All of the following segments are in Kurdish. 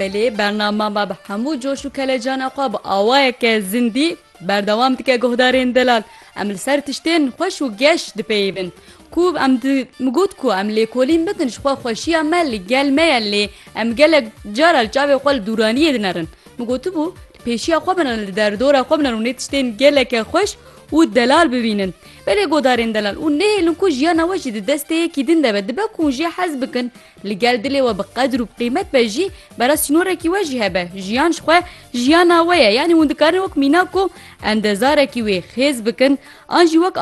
Belê bernama me bi hemû coş û kelecana xwe bi awayeke zindî berdewam dike guhdarên delal. Em li ser tiştên xweş û geş dipeyivin. Ku em min got ku em lêkolîn bikin jixwe xweşiya me li gel me ye lê em gelek cara li çavê xwe li dûraniyê dinerin. Min gotibû pêşiya xwe binin li derdora xwe binin û nê tiştên geleke xweş û delal bibînin. Belê godarên delal û nehêlin ku jiyana we jî di destê yekî din de be. Dibe ku hûn jê hez bikin, li gel dilê we bi qedir û bi qîmet be jî, bera sînorekî we jî hebe. Jiyan ji xwe jiyana we ye. Yanî hûn dikarin wek mînak û endezarekî wê xêz bikin an jî wek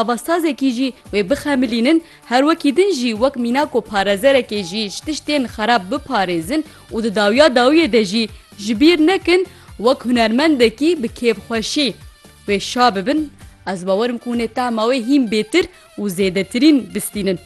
avazsazekî jî wê bixemilînin. Her wekî din jî wek mînako parezerekê jî ji tiştên xerab biparêzin û di dawiya dawiyê de jî ji bîr nekin wek hunermendekî bi kêfxweşî wê şa bibin ez bawer im ku hûn ê tehma wê hîn bêtir û zêdetirîn bistînin.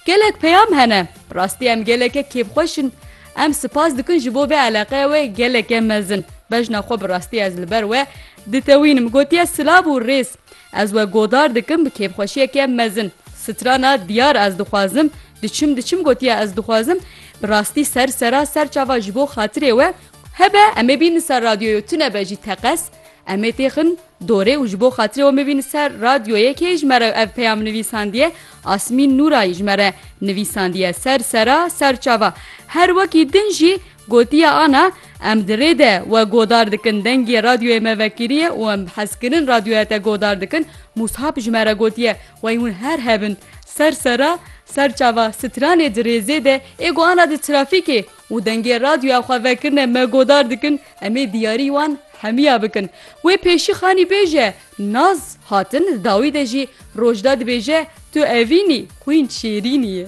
Gelek peyam hene. Bi rastî em geleke kêfxweş in. Em sipas dikin ji bo vê eleqeya we geleke mezin. Bejna xwe bi rastî ez li ber we ditewînim. Gotiye silav û rêz. Ez we godar dikim bi kêfxweşiyeke mezin. Strana diyar ez dixwazim, diçim diçim gotiye ez dixwazim, bi rastî ser sera ser çava ji bo xatirê we, hebe em ê bînin ser radyoyo tunebe jî teqez, em ê têxin dorê û ji bo xatirê we bibînin ser radyoyê kê ji me re ev peyam nivîsandiye, Asmîn Nûrayî ji me re nivîsandiye, ser sera ser çava. Her wekî din jî Gotiye Ana, Em di rê de we godar dikin, dengê radyoyê me vekiriye û em bi hezkirin radyoya te godar dikin, Mûshab ji me re gotiye, Wey hûn her hebin, ser sera, ser çava stranê di rêzê de ê ku ana di trafîkê û dengê radyoya xwe vekirine me godar dikin, em ê diyarî wan hemiya bikin. Wê pêşî xanî bêje, Naz hatin dawî de jî rojda dibêje, Tu evîn î, xwîn şêrîn î.